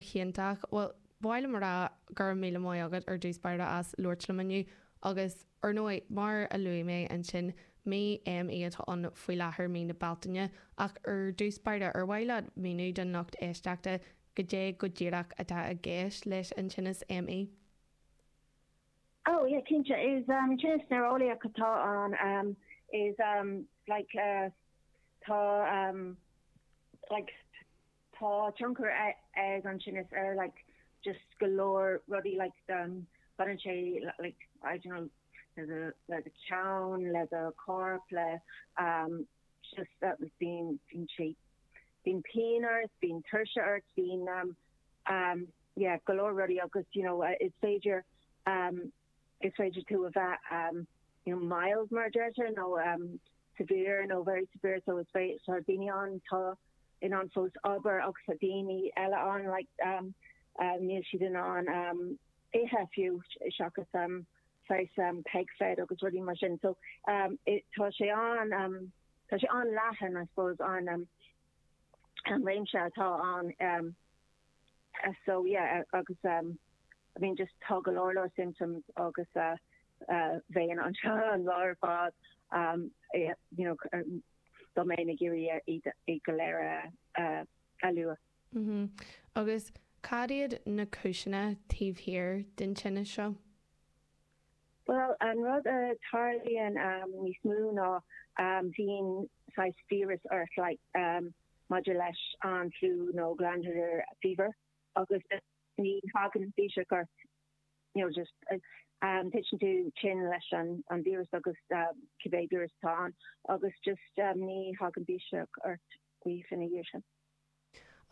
hiontach. Bhuel, ba mhaith liom a rá go raibh míle maith agat ar dtús báire as labhairt liom inniu. Agus, ar ndóigh, mar a luaigh mé ansin, mí ME atá ann faoi láthair, mí na Bealtaine. Ach ar dtús báire, ar mhaith leat míniú don lucht éisteachta goidé go díreach atá i gceist leis an tinneas ME? Oh, yeah, cinnte. Is tinneas néareolaíoch atá ann. Is like tá like. Tá tionchar ag an tinneas ar like just go leor rudaí like do baineann sé like I don't know le do le do cheann le do corp le um just uh bíonn bíonn sé bíonn pian ort bíonn tuirse ort bíonn um yeah go leor rudaí agus you know uh is féidir um Is féidir tú a bheith you know mild mar a deirtear nó severe nó very severe so is féidir tá daoine ann atá in ann fós obair agus tá daoine eile ann like níl siad in ann ithe fiú seachas saghas peg fed agus rudaí mar sin so tá sé an-leathan I suppose an an réimse atá ann so yeah agus I mean just tá go leor leor symptoms agus bheinn anseo an lá ar fad you know dá mbeinn ag iarraidh iad go léir a lua. Agus cad iad na cúiseanna taobh thiar den tinneas seo? Bhuel, an rud a tarlaíonn níos mó ná bhíonn saghas víreas ort maidir leis an fliú nó glandular fever agus ní thagann biseach ort, you know, titeann tú tinn leis an víreas agus cibé víreas atá ann agus just ní thagann biseach ort ina dhiaidh sin.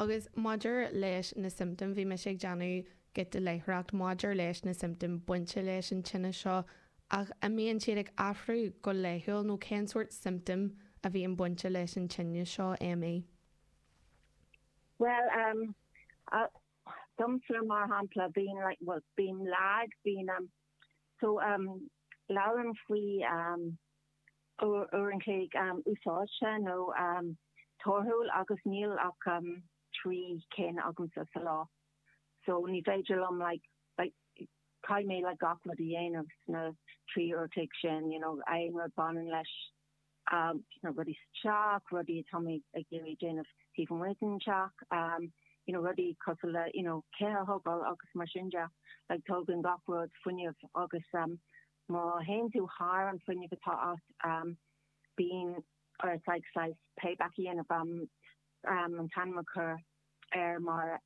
Agus maidir leis na siomptóim, bhí mise ag déanamh giota de léitheoireacht maidir leis na siomptóim bainte leis an tinneas seo, ach a mbíonn siad ag athrú go laethúil nó cén sórt siomptóim a bhíonn bainte leis an tinneas seo, ME? Bhuel, em, a, domsa mar shampla, bíonn like, well, bíonn lag, bíonn, em, so, em, labhrann faoi, em, uair an chloig úsáidte nó torthúil agus níl ach trí cinn agamsa sa lá so ní féidir liom like like caithfidh mé like gach rud a dhéanamh sna trí uair an chloig sin you know aon rud baineann leis na rudaí sa teach, rudaí atá mé ag iarraidh déanamh taobh amuigh den teach you know rudaí cosúil le you know cith a thógáil agus mar sin de like tógann gach rud fuinneamh agus Má théann tú thar an fuinneamh atá agat, bíonn ort like saghas payback a dhéanamh, an t-ainm a chur air mar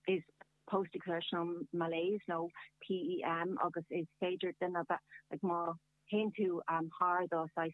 is post-exertional malaise nó PEM agus is féidir duine a bheith like má théann tú thar do saghas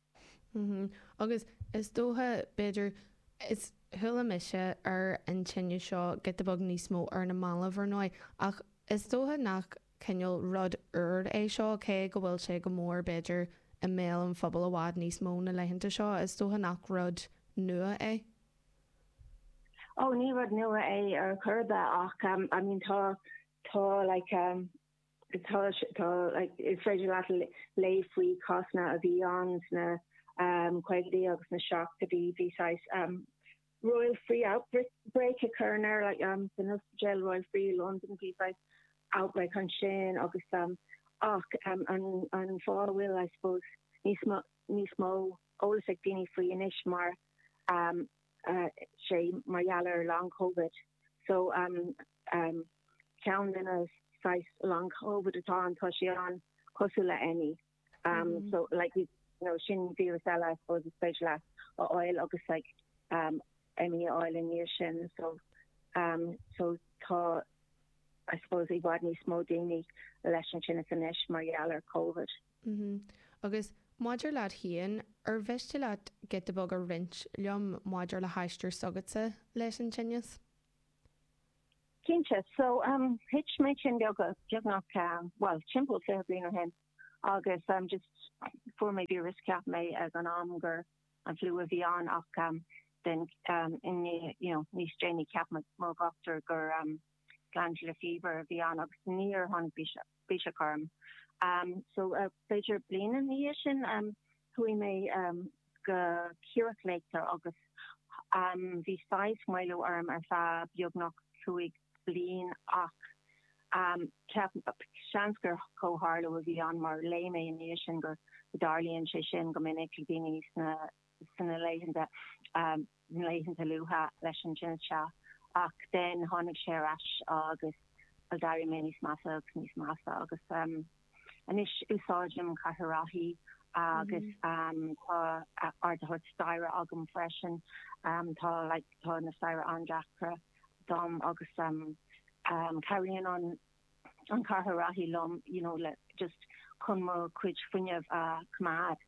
Agus is dócha, b'fhéidir, is chuala mise ar an tinneas seo giota beag níos mó ar na mallaibh, ar ndóigh, ach is dócha nach cineál rud úr é seo, cé go bhfuil sé go mór, b'fhéidir, i mbéal an phobail i bhfad níos mó na laethanta seo, is dócha nach rud nua é? Ó, ní rud nua é ar chor ar bith ach, I mean, tá, tá like, Tá, tá, is féidir leat léamh faoi cásanna a bhí ann sna um, caogaidí agus sna seachtóidí. Bhí saghas um, Royal Free outbreak a chuireann air, like, um, san ospidéal Royal Free i Londain, bhí saghas outbreak ansin agus um, ach um, an, an fáth a bhfuil, I suppose, níos mó, níos mó eolas ag daoine faoi anois mar um, uh, sé mar gheall ar long Covid. So um, am, ceann de na saghas long Covid atá ann, tá sé an-cosúil le ME, am, so like you know sin víreas eile I suppose is féidir leat a fháil agus like am, ME a fháil i ndiaidh sin, so am, so tá I suppose i bhfad níos mó daoine leis an tinneas anois mar gheall ar Covid. Mhm, agus maidir leat féin, ar mhiste leat giota beag a roinnt liom maidir le haistear s'agatsa leis an tinneas? Cinnte. So, thit mé tinn beagnach, bhuel, timpeall fiche bliain ó shin agus just fuair mé víreas. Cheap mé ag an am gur an fliú a bhí ann ach then you know níos déanaí cheap mo dhochtúir gur glandular fever a bhí ann agus níor tháinig biseach. Biseach orm. So b'fhéidir bliain ina dhiaidh sin chuaigh mé go círichleachtóir agus bhí saghas maolú orm ar feadh beagnach cúig bliain ach seans gur comhtharlú a bhí ann mar léigh mé ina dhiaidh sin go dtarlaíonn sé sin go minic le daoine sna laethanta na laethanta luatha leis an tinneas seo ach then tháinig sé ar ais agus bhuel d'éirigh mé níos measa agus níos measa agus um anois úsáidim cathaoir rothaí agus um tá ardaitheoir staighre agam freisin um tá like tá na staighre an-deacra dom agus um um cabhraíonn an an cathaoir rothaí liom you know le just chun mo chuid fuinneamh a coimeád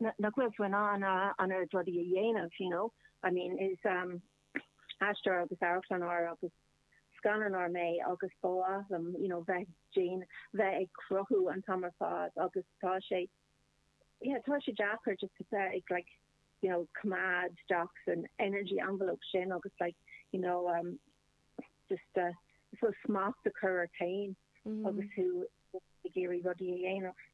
nach bhfuil tú in ann an oiread rudaí a dhéanamh, you know, I mean, is aisteoir agus amharclannóir agus scannánóir mé agus ba mhaith liom, you know, bheith ag déan, bheith ag cruthú an t-am ar fad agus tá sé, yeah, tá sé deacair just to bheith ag like, you know, coimeád taobh istigh den energy envelope sin agus like, you know, um, just uh, I suppose smacht a chur ort féin agus tú ag iarraidh rudaí a dhéanamh.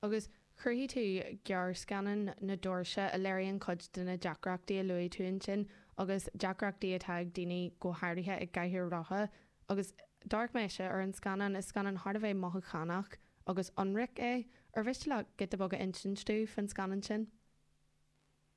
agus chruthaigh tú gearrscannán Na Doirse a léiríonn cuid de na deacrachtaí a luaigh tú ansin agus deacrachtaí atá ag daoine go háirithe i gcathaoir rotha agus d'amharc mise ar an scannán, is scannán thar a bheith mothúchánach agus ionraic é. Ar mhiste leat giota beag a insint domh fán scannán sin?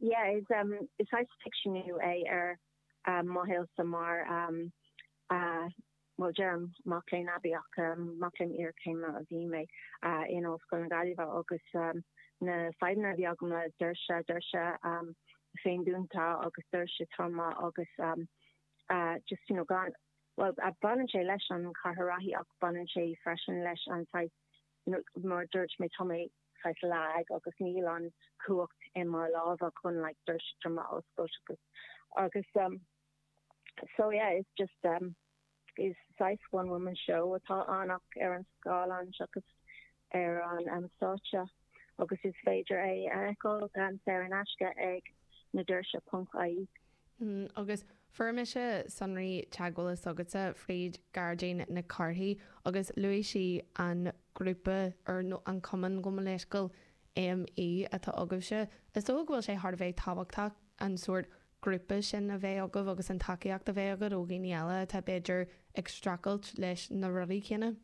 Yeah is um is saghas ficseanú é ar mo shaolsa mar um ah bhuel deirim mac léinn aibí ach um mac léinn iarchéime a bhí mé ah in Ollscoil na Gaillimhe agus um na fadhbanna a bhí agam le doirse doirse um féindúnta agus doirse troma agus um ah just you know gan bhuel ah baineann sé leis an chathaoir rothaí ach baineann sé freisin leis an saghas you know mar dúirt mé tá mé saghas lag agus níl an chumhacht i mo lámha chun like doirse troma a oscailt I suppose agus agus um so yeah it's just um is saghas one woman show atá ann ach ar an scáileán seachas ar an um stáitse agus is féidir é a fheiceáil gan saor in aisce ag na doirse ponc ie. agus fuair mise sonraí teagmhála s'agatsa fríd Gearóidín Nic Cárthaigh agus luaigh sí an grúpa or nó an cumann gabh mo leithscéal ME atá agaibhse. Is dócha go bhfuil sé thar a bheith tábhachtach an sórt grúpa sin a bheith agaibh agus an tacaíocht a bheith agaibh ó dhaoine eile atá b'fhéidir ag streachailt leis na rudaí céanna.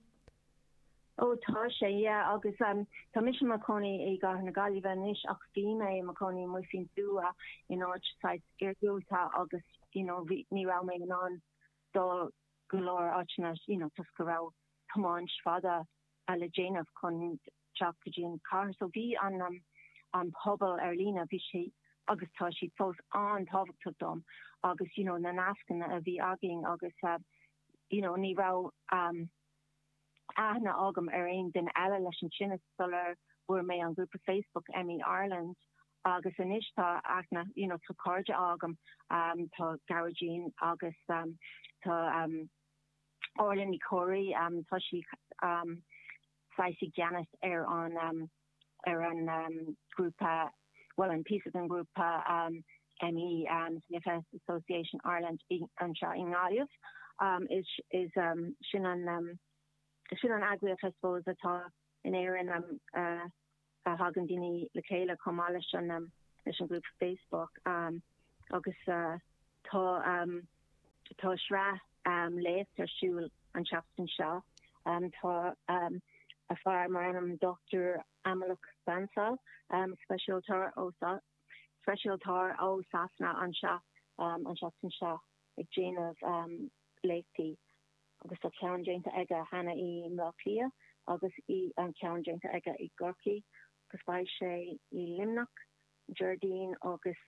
Ó tá sé, yeah agus em tá mise i mo chónaí i gcathair na Gaillimhe anois ach bhí mé i mo chónaí i Massachusetts Nua in áit saghas iargúlta agus you know bhí, ní raibh mé in ann dul go leor áiteanna you know toisc go raibh tiomáint fada a le déanamh chun teacht go dtí an chathair so bhí an em an pobal ar líne bhí sé agus tá siad fós an-tábhachtach dom agus you know na nascanna a bhí againn agus em you know ní raibh em aithne agam ar aon duine eile leis an tinneas sular bhfuair mé an grúpa Facebook ME Ireland agus anois tá aithne, you know, tá cairde agam, tá Gearóidín agus tá Orlaith Ní Chomhraí, tá sí saghas i gceannas ar an. ar an ngrúpa, bhuel, an píosa den ghrúpa ME CFS Association Ireland, anseo i nGaillimh. Is sin an eagraíocht, I suppose, atá in Éirinn a thagann daoine le chéile chomh maith leis an leis an ngrúpa Facebook agus tá Tá sraith léacht ar siúl an tseachtain seo. Tá fear mar ainm Dr Amolak Bansal, speisialtóir ó Sasana anseo an seachtain seo ag déanamh léachtaí agus tá ceann déanta aige cheana i mBleá Cliath agus ceann déanta aige i gCorcaigh agus beidh sé i Luimneach, Déardaoin agus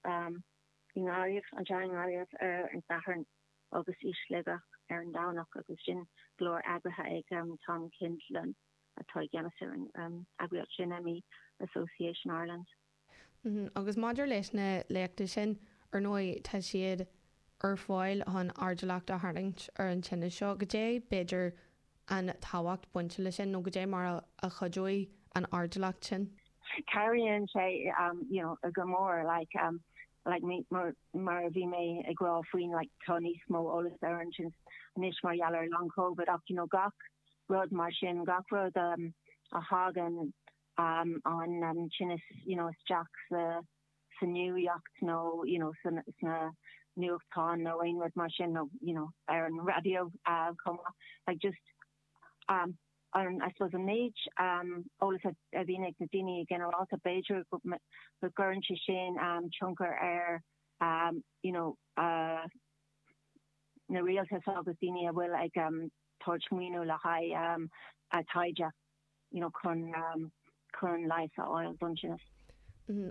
i nGaillimh, anseo i nGaillimh, ar an Satharn agus i Sligeach ar an Domhnach agus sin go léir eagraithe ag Tom Kindlon atá i gceannas ar an eagraíocht sin, ME Association Ireland. Agus maidir leis na léachtaí sin, ar ndóigh tá siad ar fáil chun airdeallacht a tharraingt ar an tinneas seo, caidé b'fhéidir an tábhacht a bhaineann le sin nó caidé mar a chuideoidh an airdeallacht sin. Cabhraíonn sé you know go mór like like mé mar a bhí mé ag rá faoin like tá níos mó eolas ar an tinneas anois mar gheall ar long covid ach you know gach rud mar sin gach rud a thagann um, an tinneas you know isteach sa sa nuaíocht nó you know sna nuachtáin nó aon rud mar sin nó you know ar an raidió chomh maith like just um an I suppose an méid um eolas a bhíonn ag na daoine i nginearálta b'fhéidir go gcuireann sé sin um tionchar ar um you know uh na rialtais agus daoine a bhfuil ag um tabhairt maoiniú le haghaidh um a taighde. you know, chun, um, chun leigheas a fháil don tinneas.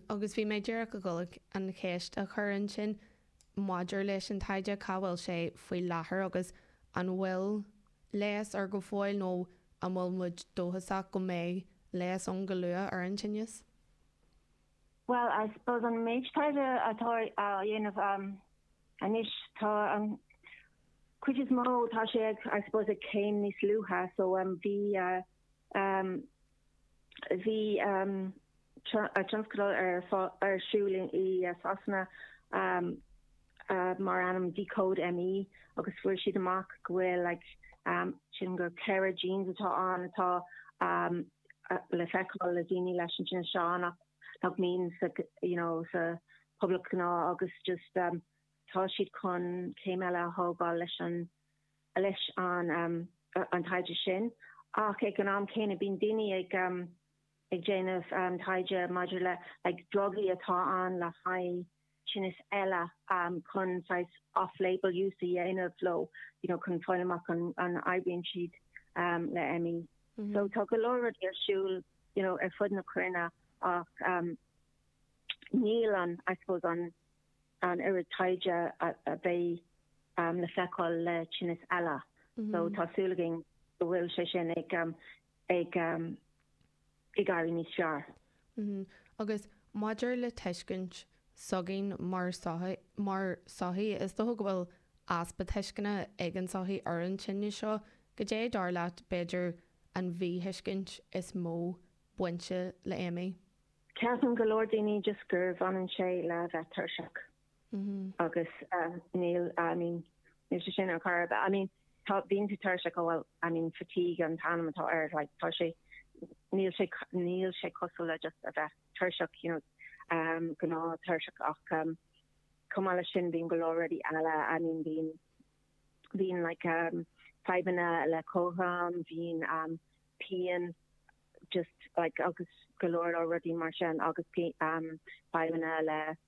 Agus bhí mé ag iarraidh a dhul an cheist a chur ansin maidir leis an taighde, cá bhfuil sé faoi láthair agus an bhfuil leigheas air go fóill nó an bhfuil muid dóchasach go mbeidh leigheas ann go luath ar an tinneas? Bhuel, I suppose an méid taighde atá á dhéanamh anois, tá an chuid is mó, tá sé ag, I suppose, ag céim níos luaithe, so bhí um bhí um tionscadal ar siúl i Sasana um um mar ainm Decode ME agus fuair siad amach go bhfuil like um sin go ceithre genes atá ann atá um le feiceáil le daoine leis ansin so nach nach mbíonn sa you know sa public gnáth agus just um, tá siad chun céim eile a thógáil leis an leis an um, an taighde sin ach ag an am céanna bíonn daoine ag um, ag déanamh um, taighde maidir le le drugaí atá ann le haghaidh tinnis eile chun saghas off-label use a dhéanamh leo, you know, chun fáil amach an an oibríonn siad le ME. So tá go leor rudaí ar siúl, you know, ar fud na cruinne ach níl an, I suppose, an an oiread taighde a bheadh le feiceáil le tinnis eile. So tá súil againn go bhfuil sé sin ag ag ag éirí níos fearr. Agus maidir le tuiscint s'againn mar sochaí, mar sochaí, is dócha go bhfuil easpa tuisceana ag an sochaí ar an tinneas seo. Goidé, dar leat, b'fhéidir, an mhíthuiscint is mó bainte le ME? Ceapann go leor daoine just gur bhaineann sé le bheith tuirseach. Agus níl, I mean, níl sé sin ar chor ar bith. I mean, tá, bíonn tú tuirseach, oh well, I mean, fatigue an t-ainm atá air, like, tá sé, níl sé, níl sé cosúil le just a bheith tuirseach, you know, gnáth-tuirseach ach chomh maith leis sin bíonn go leor rudaí eile, I mean, bíonn, bíonn, like, fadhbanna le cothrom, bíonn pian, just, like, agus go leor rudaí mar sin agus fadhbanna le.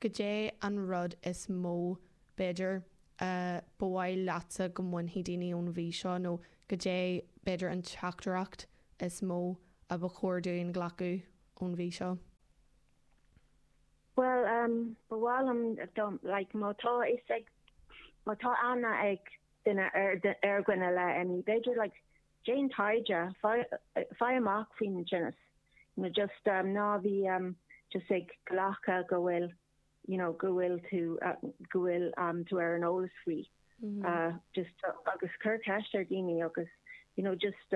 Goidé an rud is mó, b'fhéidir, a ba mhaith leatsa go mbainfeadh daoine ón mhí seo, nó goidé, b'fhéidir, an teachtaireacht is mó a ba chóir dúinn glacadh ón mhí seo? Bhuel, ba mhaith liom, like, má tá fhios ag, má tá aithne ag duine ar dhuine le ME, b'fhéidir, like, Déan taighde, faigh amach faoin tinneas, nó just ná bí just ag glacadh go bhfuil, you know, go bhfuil tú, go bhfuil tú ar an eolas faoi. Just, agus cuir ceist ar dhaoine agus, you know, just,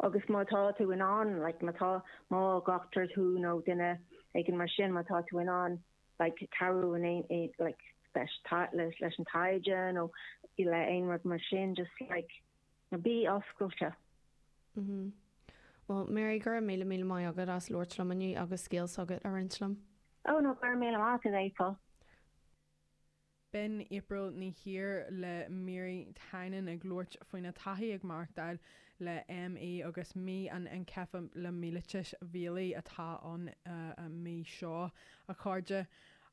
agus má tá tú in ann, like, má tá, más dochtúir tú nó duine éigin mar sin, má tá tú in ann, like, cabhrú in aon, like, leis, leis an taighde nó le aon rud mar sin, just, like, No bí oscailte. Mm-hmm. Bhuel, Mary, gura míle míle maith agat as labhairt liom inniu agus scéal s'agat a roinnt liom. Ó, no, gura míle maith agat, April. B'in April Ní Ír le Mary Tynan ag labhairt faoina taithí ag maireachtáil le ME agus Mí an Einceifilimiailítis Mhiailgigh atá ann an mhí seo, a chairde.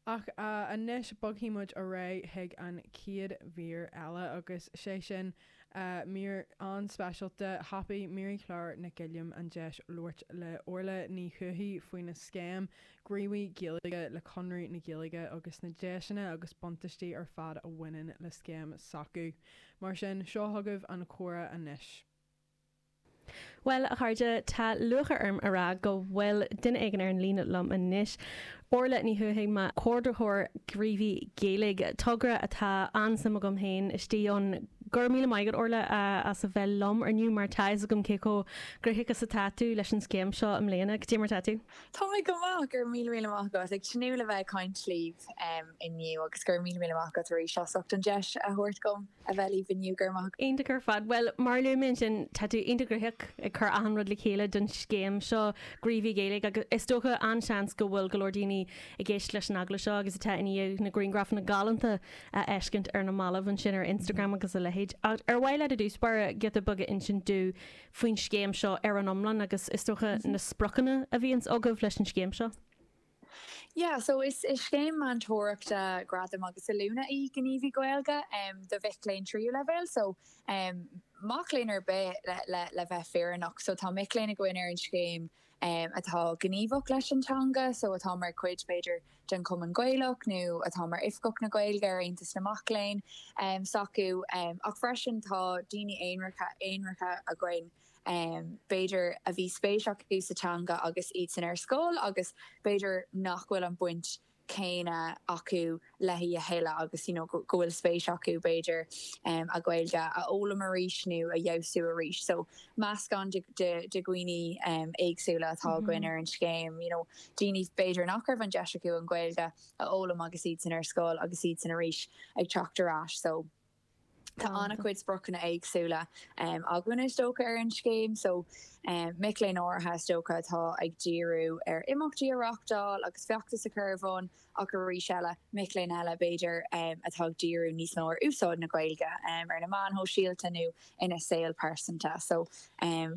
Ach anois bogfaidh muid ar aghaidh chuig an chéad mhír eile agus 'sé sin, Mír an-speisialta, thapaigh Máirí Clár Nic Uilliam an deis labhairt le Orla Ní Thuathaigh faoina scéim, Gníomhaí Gaeilge le Conradh na Gaeilge agus na deiseanna agus buntáistí ar fad a bhaineann le scéim s'acu. Mar sin, seo chugaibh an comhrá anois. Bhuel, a chairde, tá lúcháir orm a rá go bhfuil duine éigin ar an líne liom anois, Orla Ní Thuathaigh, comhordaitheoir Gníomhaí Gaeilge, togra atá an-suim agam féin istigh ann. Go raibh míle maith agat, Orla, as a bheith liom ar ais inniu, mar tá a fhios agam cé chomh gnóthach is atá tú leis an scéim seo i mbliana. Cad é mar atá tú. Tá mé go maith, go raibh míle, míle maith agat. Ag tnúth le bheith ag caint libh inniu agus go raibh míle, míle maith agat arís as ucht an deis a thabhairt dhom. a bheith libh inniu go raibh maith. Iontach ar fad. Bhuel, mar a luaigh mé ansin, tá tú iontach gnóthach ag cur achan rud le chéile don scéim seo, Gníomhaí Gaeilge, agus is dócha, an-seans, go bhfuil go leor daoine ag éisteacht leis an agallamh seo agus atá i ndiaidh na grianghrafanna galánta a fheiscint ar na mallaibh ansin ar Instagram agus a leithéid. Ach ar mhaith leat i dtús báire giota beag a insint domh faoin scéim seo ar an iomlán agus, is dócha, na spriocanna a bhíonns agaibh leis an scéim seo? Yeah so is scéim meantóireachta, gradam agus oiliúna í Gníomhaí Gaeilge do mhic léinn tríú leibhéal so mac léinn ar bith le bheith fírinneach. So tá mic léinn againn ar an scéim atá gníomhach leis an teanga so atá mar chuid b'fhéidir den Chumann Gaelach nó atá mar Oifigeach na Gaeilge ar Aontas na Mac Léinn s'acu ach freisin tá daoine aonaracha againn b'fhéidir, a bhí spéis acu sa teanga agus iad sin ar scoil agus b'fhéidir nach bhfuil an bhaint chéanna acu léi a thuilleadh agus you know go bhfuil spéis acu, b'fhéidir, an Ghaeilge a fhoghlaim arís nó a fheabhsú arís. So meascán de de dhaoine éagsúla atá againn ar an scéim, you know daoine b'fhéidir nach raibh an deis acu an Ghaeilge a fhoghlaim agus iad sin ar scoil agus iad sin arís ag teacht ar ais. So. Tá an-chuid spriocanna éagsúla againn is dócha ar an scéim so mic léinn áirithe is dócha atá ag díriú ar imeachtaí a reáchtáil agus feachtais a chur ar bun ach arís eile mic léinn eile b'fhéidir atá ag díriú níos mó ar úsáid na Gaeilge ar na meáin shóisialta nó ina saol pearsanta so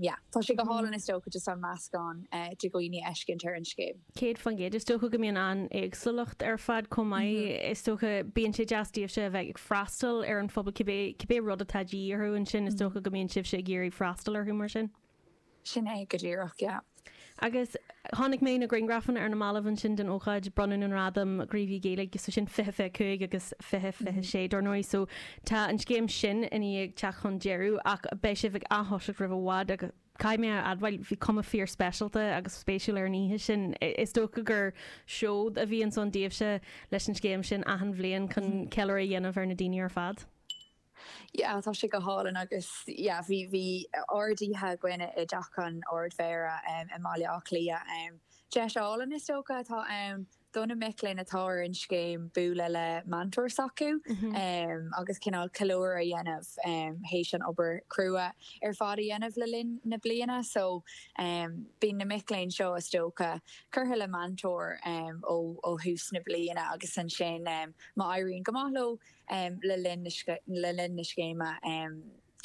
yeah tá sé go hálainn is dócha just an meascán de dhaoine a fheiscint ar an scéim. 100%. Is dócha go mbíonn an-éagsúlacht ar fad chomh maith. Is dócha, bíonn sé deas daoibhse a bheith ag freastal ar an phobal cibé, cibé rud atá de dhíth orthu ansin, is dócha go mbíonn sibhse ag iarraidh freastal orthu mar sin? Sin é, go díreach, yeah. Agus chonaic mé na grianghrafanna ar na mallaibh ansin den ócáid bronnadh na ngradam Gníomhaí Gaeilge, so sin fiche, fiche cúig agus fiche, fiche sé dár ndóigh, so tá an scéim sin i ndiaidh teacht chun deireadh ach beidh sibh ag atoiseacht roimh i bhfad agus. Caithfidh mé a admháil, bhí cuma fíor speisialta agus spéisiúil ar an oíche sin. Is dócha gur seod a bhí ansan daoibhse leis an scéim sin achan bliain chun ceiliúradh a dhéanamh ar na daoine ar fad? Yeah, tá sé go hálainn agus yeah, bhí, bhí ard oíche againn i dteach an Ard Mhéara i mBaile Átha Cliath. Deis álainn is dócha atá ann do na mic léinn atá ar an scéim bualadh le meantóir s'acu agus cineál ceiliúradh a dhéanamh théis an obair chrua ar fad a dhéanamh le linn na bliana. So bíonn na mic léinn seo, is dócha, curtha le meantóir ó thús na bliana agus ansin má éiríonn go maith leo le linn na scéime,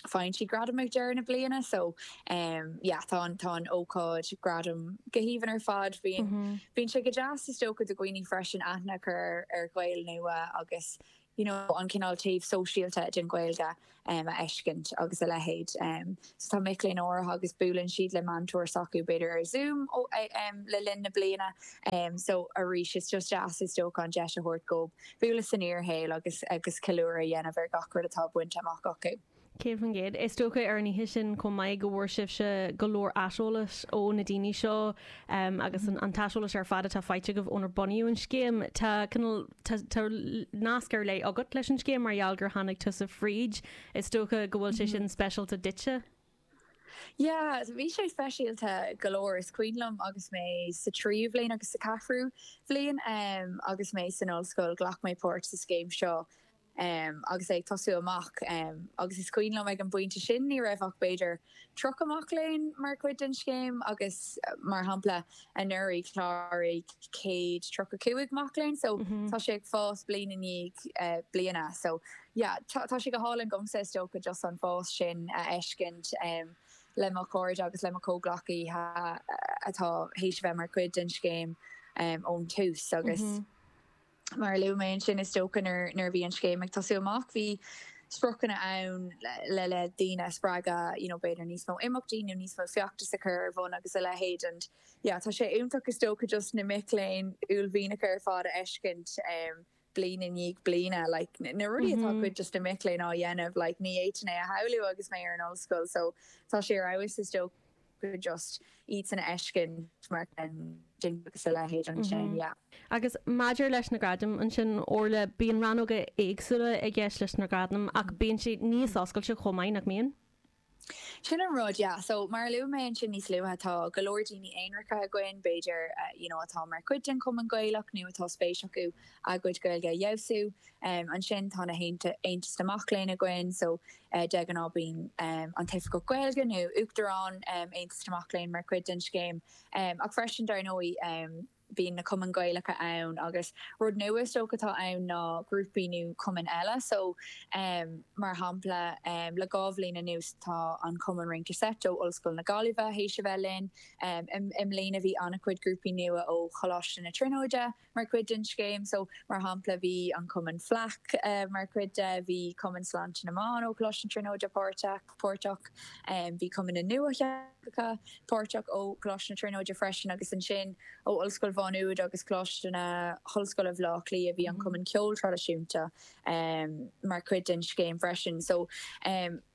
Faigheann siad gradam ag deireadh na bliana so yeah tá an tá an ócáid gradam go haoibhinn ar fad. Bhíonn bhíonn sé go deas is dócha do dhaoine freisin aithne a chur ar ar Ghaeil nua agus you know an cineál taobh sóisialta den Ghaeilge um a fheiscint agus a leithéid. Um so tá mic léinn áirithe agus buaileann siad le meantóir s'acu b'fhéidir ar Zoom ó um le linn na bliana um so arís is just deas is dócha an deis a thabhairt dóibh bualadh san fhíor-shaol agus agus ceiliúradh a dhéanamh ar gach rud atá bainte amach acu. 100%. Is dócha ar an oíche sin chomh maith go bhfuair sibhse go leor aiseolais ó na daoine seo agus an t-aiseolas ar fad atá faighte agaibh ónar bunaíodh an scéim. Tá cineál tá nasc ar leith agat leis an scéim mar gheall gur tháinig tusa fríd. Is dócha go bhfuil sé sin speisialta duitse. Yeah, bhí sé speisialta go leor. Is cuimhin liom agus mé sa tríú bhliain agus sa cheathrú bhliain agus mé san ollscoil, ghlac mé páirt sa scéim seo agus é ag tosú amach agus is cuimhin liom ag an bpointe sin ní raibh ach b'fhéidir 30 mac léinn mar chuid den scéim agus, mar shampla, Anuraidh, chláraigh céad tríocha cúig mac léinn, so tá sé ag fás bliain i ndiaidh bliana. So yeah, tá sé go hálainn dhomsa is dócha just an fás sin a fheiscint le mo chairde agus le mo chomhghleacaithe atá théis a bheith mar chuid den scéim ón tús agus. Mar a luaigh mé ansin, is dócha nuair a bhí an scéim ag tosú amach, bhí spriocanna ann le le daoine a spreagadh, you know b'fhéidir níos mó imeachtaí nó níos mó feachtas a chur ar bhun agus a leithéid and yeah tá sé iontach is dócha just na mic léinn uaillmhianacha ar fad a fheiscint um bliain i ndiaidh bliana like na rudaí atá cuid just na mic léinn á dhéanamh like ní fhéadfainn é a shamhlú agus mé ar an ollscoil so tá sé ar fheabhas is dócha go just iad san a fheiscint mar sin de agus a leithéid ansin yeah. Agus maidir leis na gradaim ansin Orla, bíonn rannóga éagsúla i gceist leis na gradaim ach bíonn siad níos oscailte chomh maith, nach mbíonn? Sin an rud yeah. so mar a luaigh mé ansin níos luaithe tá go leor daoine aonracha againn b'fhéidir uh, you know, atá mar chuid den Chumann Gaelach nó atá spéis acu a gcuid Gaeilge a fheabhsú. Um, ansin tá na Aontais na Mac Léinn againn, so eh de ghnáth bíonn um, an tOifigeach Gaeilge nó Uachtarán um, Aontas na Mac Léinn mar chuid den scéim. Um, ach freisin dar ndóigh um, bíonn na Cumainn Ghaelacha ann agus rud nua is dócha atá ann ná grúpaí nó cumainn eile. So um, mar shampla um, le dhá bhliain anuas tá an Cumann Rince Seit ó Ollscoil na Gaillimhe théis a bheith linn. Um, i, i mbliana bhí an-chuid grúpaí nua ó Choláiste na Tríonóide. mar chuid den scéim. So, mar shampla, bhí an Cumann Fleadh mar chuid de, bhí Cumann Sláinte na mBan ó Choláiste na Tríonóide páirteach, bhí Cumann na nDúiche páirteach ó Choláiste na Tríonóide freisin agus ansin ó Ollscoil Mhá Nuad agus Coláiste na hOllscoile Bhleá Cliath. Bhí an Cumann Ceoil Traidisiúnta mar chuid den scéim freisin. So,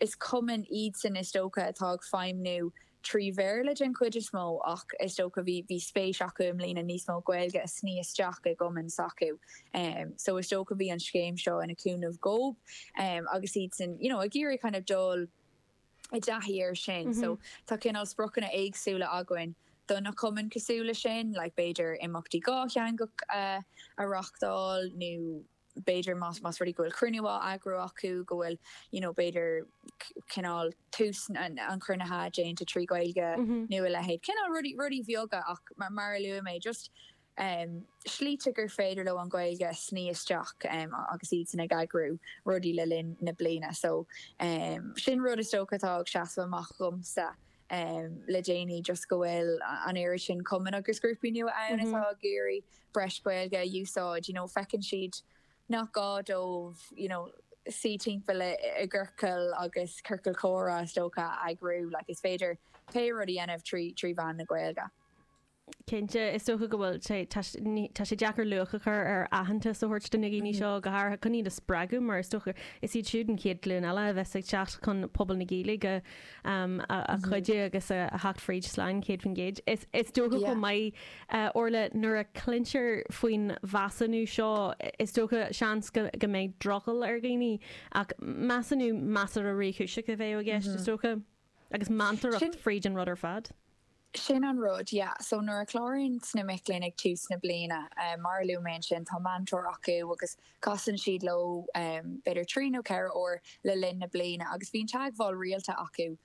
is cumainn iadsan, is dócha, atá ag feidhmniú trí Bhéarla den chuid is mó ach is dócha bhí bhí spéis acu i mbliana níos mó Gaeilge a shní isteach i gcumainn s'acu so is dócha bhí an scéim seo ina cúnamh dhóib agus iadsan you know ag iarraidh kind of dul i dtaithí air sin so tá cineál spriocanna éagsúla againn do na cumainn cosúil leis sin like b'fhéidir imeachtaí dhátheangach a a reáchtáil nó b'fhéidir, más más rud é go bhfuil cruinniú á eagrú acu, go bhfuil, you know, b'fhéidir cineál tús an chruinnithe déanta trí Ghaeilge nó a leithéid, cineál rudaí, rudaí bheaga ach mar, mar a luaigh mé, just slíte gur féidir leo an Ghaeilge a shní isteach agus iadsan ag eagrú rudaí le linn na bliana. So, sin rud is dócha atá ag seasamh amach dhomsa le déanaí, just go bhfuil an oiread sin cumann agus grúpaí nua ann atá ag iarraidh breis Gaeilge a úsáid, you know feiceann siad nach gá dóibh you know suí timpeall i gciorcal agus ciorcal comhrá is dócha a eagrú, like is féidir pé rud a dhéanamh trí mheán na Gaeilge. Cinnte, is dócha go bhfuil sé, tá, ní, tá sé deacair luach a chur ar aitheantas a thabhairt do na daoine seo, go háirithe chun iad a spreagadh, mar is dócha, is iad siúd an chéad ghlúin eile a bheas ag teacht chun pobal na Gaeilge um, a, a chuidiú agus a, a theacht fríd slán céad faoin gcéad. Is, is dócha chomh maith, uh, Orla, nuair a cluintear faoin mheasúnú seo, is dócha seans go, go mbeidh drogall ar dhaoine, ach measúnú measartha réchúiseach a bheidh i gceist, is dócha. Agus meantóireacht fríd an rud ar fad. Sin an rud, yeah. So nuair a chláraíonns na mic léinn ag tús na bliana, mar a luaigh mé ansin, tá meantóir acu agus casann siad leo b'fhéidir trí nó ceithre uair le linn na bliana agus bíonn teagmháil rialta acu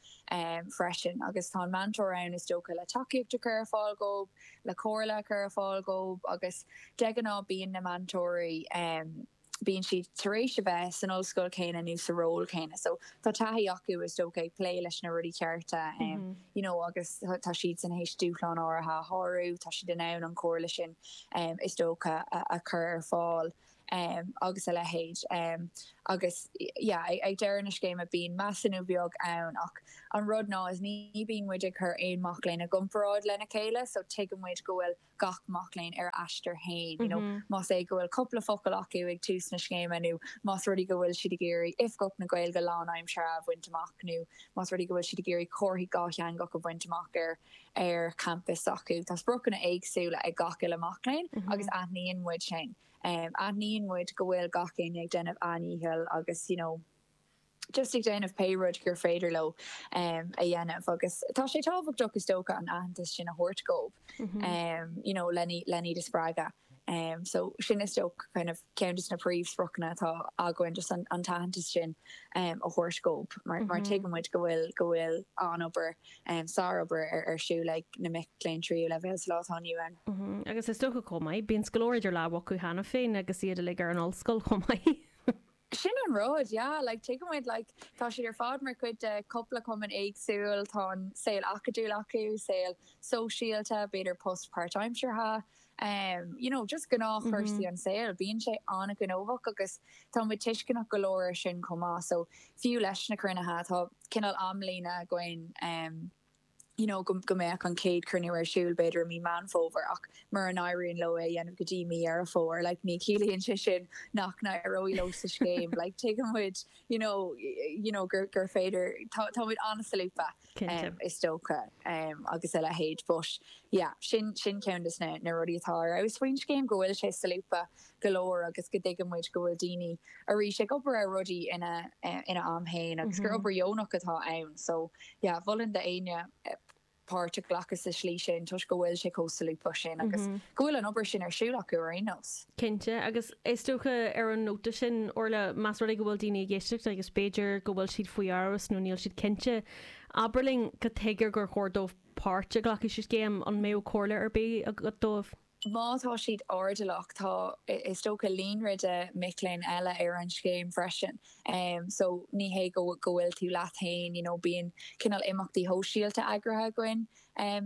freisin. Agus tá an meantóir ann is dócha le tacaíocht a chur ar fáil dhóibh, le comhairle a chur ar fáil dhóibh agus de ghnáth bíonn na meantóirí, bíonn siad tar éis a bheith san ollscoil chéanna nó sa ról céanna so tá taithí acu is dócha ag plé leis na rudaí cearta um you know agus tá siad tar éis dúshláin áirithe a shárú, tá siad in ann an chomhairle sin um is dócha a a chur ar fáil um agus a leithéid um agus yeah ag ag deireadh na scéime bíonn measúnú beag ann ach an rud ná is ní bhíonn muid ag cur aon mac léinn i gcomparáid lena chéile so tuigeann muid go bhfuil gach mac léinn ar a aistear féin, you know más é go bhfuil cupla focal acu ag tús na scéime nó más rud í go bhfuil siad ag iarraidh Oifigeach na Gaeilge lánaimseartha a bhaint amach nó más rud í go bhfuil siad ag iarraidh comharthaí dhátheangach a bhaint amach ar ar champas s'acu. Tá spriocanna éagsúla ag gach uile mac léinn agus aithníonn muid sin. Aithníonn muid go bhfuil gach éinne ag déanamh a ndícheall agus you know, just ag déanamh pé rud gur féidir leo a dhéanamh agus tá sé tábhachtach is dócha an aitheantas sin a thabhairt dhóibh you know le hiad a spreagadh. Um so sin is dócha kind of ceann de na príomhspriocanna atá againn just an an t-aitheantas sin um a thabhairt dhóibh mar mar tuigeann muid go bhfuil go bhfuil an-obair um sárobair ar ar siúl ag na mic léinn tríú leibhéal sa lá atá inniu ann. Agus is dócha chomh maith bíonn scoláirí idir lámha acu cheana féin agus iad uilig ar an ollscoil chomh maith. Sin an rud, yeah, like, tuigeann muid, like, tá siad ar fad mar chuid de chúpla cumann éagsúil, tá an saol acadúil acu, saol sóisialta, b'fhéidir post páirtaimseartha, em, you know, just gnáthchúrsaí an tsaoil, bíonn sé an-ghnóthach agus tá muid tuisceanach go leor air sin chomh maith, so, fiú leis na cruinnithe, tá cineál amlíne againn, em, you know, go, go mbeadh an chéad chruinniú ar siúl b'fhéidir i mí Meán Fómhair ach mura n-éiríonn leo é a dhéanamh go dtí mí Dheireadh Fómhair, like, ní chiallaíonn sé sin nach n-éireoidh leo sa scéim, like, tuigeann muid, you know, you know gur, gur féidir, tá, tá muid an-solúbtha, Cinnte. em, is dócha, em, agus a leithéid but, yeah, sin, sin ceann de na, na rudaí atá ar fheabhas faoin scéim, go bhfuil sé solúbtha, go leor agus go dtuigeann muid go bhfuil daoine arís ag obair ar rudaí ina ina am fhéin agus gur obair dheonach atá ann so yeah mholfainn do éinne páirt a ghlacadh sa slí sin toisc go bhfuil sé chomh solúbtha sin agus go bhfuil an obair sin ar siúl acu ar aon nós. Cinnte agus is dócha ar an nóta sin Orlaith más rud é go bhfuil daoine ag éisteacht agus b'fhéidir go bhfuil siad faoi amhras nó níl siad cinnte abair linn cad chuige gur chóir dóibh páirt a ghlacadh sa scéim, an mbeadh comhairle ar bith agat dóibh? Má tá siad ardaidhmeannach, tá, is dócha, líonra de mhic léinn eile ar an scéim freisin so ní hé go bhfuil tú leat féin, you know, bíonn cineál imeachtaí sóisialta eagraithe againn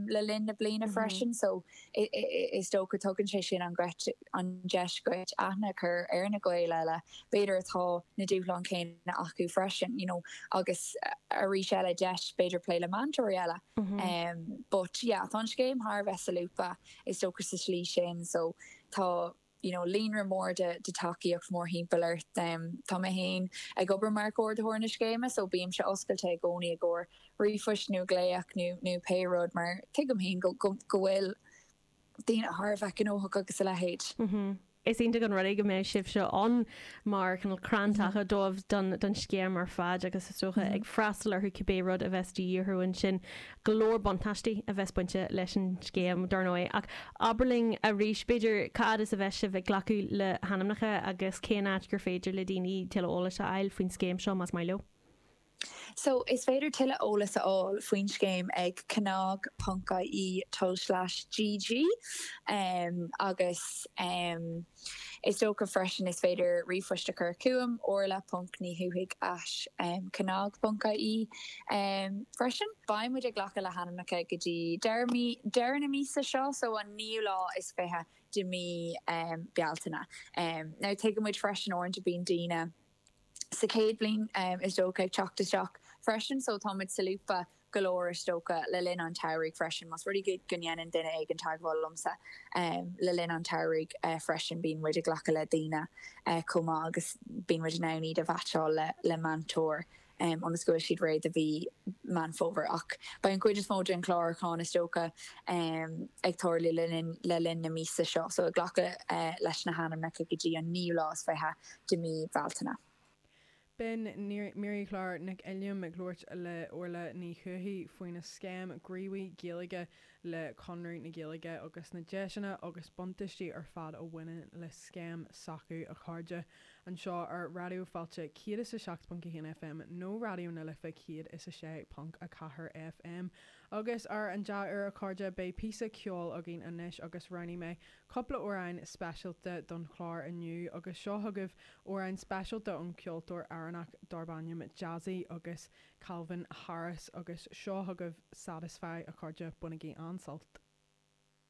le linn na bliana freisin so is dócha tugann sé sin an gheit, an deis dhuit aithne a chur ar na Gaeil eile b'fhéidir atá na dúshláin chéanna acu freisin, you know, agus arís eile deis b'fhéidir plé le meantóirí eile but yeah tá an scéim thar a bheith solúbtha. Is dócha sa slí sin so tá you know líonra mór de tacaíocht mórthimpeall ort. Em tá mé féin ag obair mar chomhordaitheoir na scéime so bímse oscailte i gcónaí i gcomhair ríomhphoist nó glaoch nó nó pé rud mar tuigim féin go go go bhfuil daoine thar a bheith gnóthach agus a leithéid. Mm-hmm. Is iontach an rud é go mbeidh sibhse ann mar chrann taca dóibh don scéim ar fad agus is dócha ag freastal orthu cibé rud a bheas de dhíth orthu ansin. Go leor buntáistí a bheas bainte leis an scéim, dar ndóigh, ach abair linn arís, b'fhéidir, cá fhad is a bheas sibh ag glacadh le hainmneacha agus cén áit gur féidir le daoine tuilleadh eolais a fháil faoin scéim seo más maith leo. So, is féidir tuilleadh eolas a fháil faoin scéim ag cnag.ie tulslais GG agus is dócha freisin is féidir ríomhphoist a chur chugam, orlaith.nidhubhthaigh at cnag.ie, freisin. Beidh muid ag glacadh le hainmneacha go dtí deireadh mí, deireadh na míosa seo, so an naoú lá is fiche de mí Bealtaine. Now, tuigeann muid freisin uaireanta bíonn daoine. sa chéad bhliain is dócha, ag teacht isteach freisin so tá muid solúbtha go leor is dócha le linn an tsamhraidh freisin. Más rud é go ndéanann duine éigin teagmháil liomsa le linn an tsamhraidh freisin bíonn muid ag glacadh le daoine chomh maith agus bíonn muid in ann iad a mheaitseáil le meantóir ionas go bhfuil siad réidh do mhí Meán Fómhair. Ach beidh an chuid is mó den chlárúchán, is dócha, ag tarlú le linn na míosa seo, so ag glacadh leis na hainmneacha go dtí an naoú lá is fiche de mí Bealtaine. B'in Máirí Chlár Nic Uilliam ag labhairt le Orlaith Ní Dhubhthaigh faoin scéim Gníomhaí Gaeilge le Conradh na Gaeilge agus na deiseanna agus buntaistí ar fad a bhaineann le scéim s'acu, a chairde, anseo ar Raidió Fáilte 107.1 FM nó Raidió na Life 106.4 FM. Agus ar an dea-uair, a chairde, beidh píosa ceoil againn anois agus roghnaigh mé cúpla amhráin speisialta don chlár inniu agus seo chugaibh amhrán speisialta ón cheoltóir Éireannach darb ainm Jazzy agus Calvin Harris, Agus seo chugaibh Satisfy a chairde, bainigí an-sult.